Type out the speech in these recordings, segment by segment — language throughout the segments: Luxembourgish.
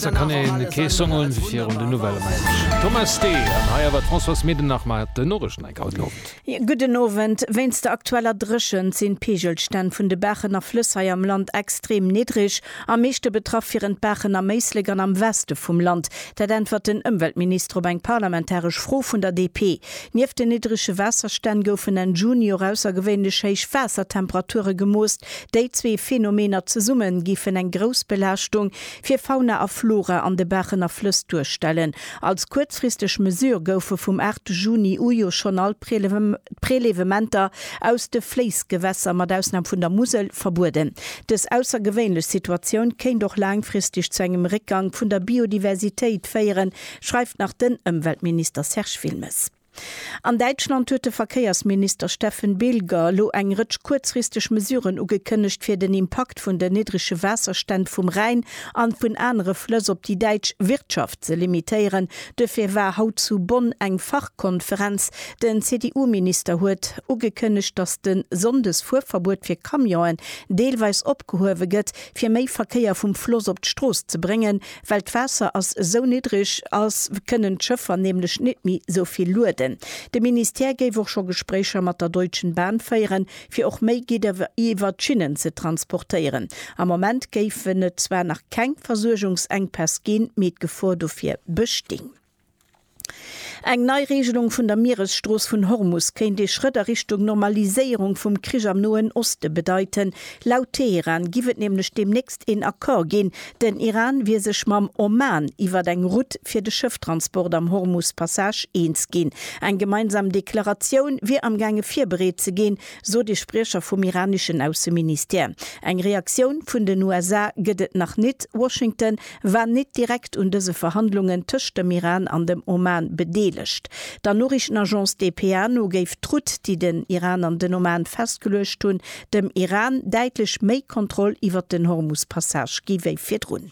Da kann een kee Song huelen wéi virun den Nouvelle mengen ech. Thomas Dee an hei awer d'Françoise Medernach mat den Norichten. Heike, Gudden Owend. Gudden Owend. Wéinst der aktueller Dréchent sinn d'Peegelstänn vun de Baachen a Flëss hei am Land extrem niddreg. Am meeschte betraff wieren d'Baachen am Éislek an am Weste vum Land. Dat äntwert den Ëmweltminister op eng parlamentaresch Fro vun der DP. Nieft den niddrege Waasserstänn goufen Enn Juni och aussergewéinlech héich Waassertemperature gemoost. Déi zwee Phänomener zesumme giffen eng grouss Belaaschtung fir Fauna a Flora an de Baachen a Flëss duerstellen. Als kuerzfristeg Mesure goufe vum 8 Juni u jo schonn all d'Prelevementer aus de Fléissgewässer, mat Ausnam vun der Musel, verbueden. Dës aussergewéinlech Situatioun kéint och laangfristeg zu engem Réckgang vun der Biodiversitéit féieren, schreift nach den Ëmweltminister Serge Wilmes. An Däitschland huet de Verkéiersminister Steffen Bilger elo eng Rëtsch kuerzfristeg Mesuren ugekënnegt, fir den Impakt vun den niddrege Waasserstänn vum Rhäin an vun anere Flëss op déi däitsch Wirtschaft ze limitéieren. Duerfir war haut zu Bonn eng Fachkonferenz. Den CDU-Minister huet ugekënnegt, datt den Sonndesfuerverbuet fir Camionen deelweis opgehuewe gëtt, fir méi Verkéier vum Floss op d'Strooss ze bréngen, Well d'Waasser ass esou niddreg ass, kënnen d'Schëffer nämlech net méi esou vill lueden. De Ministère géif och scho Gespréicher mat der Deutschen Bahn féieren, fir och méi Gidder iwwer d'Schinnen ze transportéieren. Am Moment géifen et zwar nach keng Versuergungsenkpäss ginn, mee d'Gefor dofir besting. Eng Neireegelung vun der Mieresstrooss vun Hormus kéint ee Schrëtt a Richtung Normaliséierung vum Krich am Noen Oste bedeiten. Laut Teheran giff et nämlech deemnächst een Accord ginn. Den Iran wier sech mam Oman iwwert eng Route fir de Schëfftransport am Hormus-Passage eens ginn. Eng gemeinsam Deklaratioun wier amgaange virbereet ze ginn, sot ee Spriecher vum iraneschen Ausseministère. Eng Reaktioun vun den USA gëtt et nach nit. Washington war nit direkt un dëse Verhandlungen tëscht dem Iran an dem Oman bedeelegt. Der Noriichtenagence dpa no géif d'Route, déi den Iran an den Oman festgeluecht hunn, dem Iran däitlech méi Kontroll iwwert den Hormus-Passage gi wéi virdrun.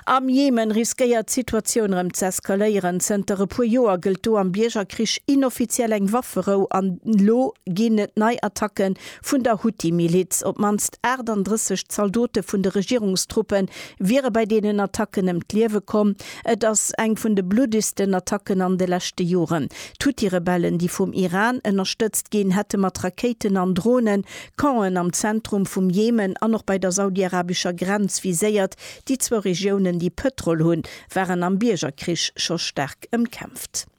Am Jemen riskéiert d'Situatioun rëm z'eskaléieren. Zënter e puer Joer gëllt do am Biergerkrich inoffiziell eng Wafferou an lo ginn et nei Attacken vun der Huthi-Miliz. Op d'mannst 38 Zaldote vun de Regierungstruppe wiere bei deenen Attacken ëm d'Liewe komm. Et ass eng vun de bluddegsten Attacken an de leschte Joren. D'Huthi-Rebellen, déi vum Iran ënnerstëtzt ginn, hätte mat Rakéiten an Dronen Campen am Zentrum vum Jemen an och bei der saudiarabescher Grenz viséiert. Déi zwou Regiounen, déi Pëtrol hunn, waren am Biergerkrich scho staark ëmkämpft.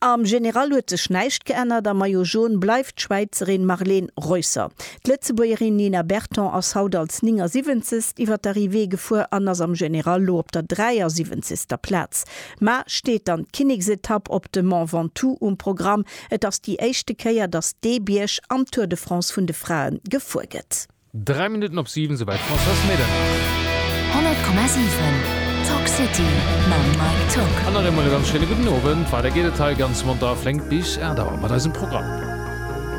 Am General huet sech näischt geännert, am Maillot Jaune bleift d'Schwäizerin Marlene Reusser. D'Lëtzebuergerin Nina Berton ass haut als 79. iwwer d'Arrivée gefuer an ass am General elo op der 73. Plaz. Ma steet dann d'Kinneksetapp op de Mont Ventoux um Programm? Et ass déi éischte Kéier, datt dee Bierg am Tour de France vun de Frae gefuer gëtt. Dräi Minutten op siwen, esou wäit d'Montre ass Médernacht. 100,7 Talk City mam Mike Tuck. An nach eemol e ganz schéine gudden Owend. Weider geet et hei ganz monter a flénk bis 8 Auer mat eisem Programm.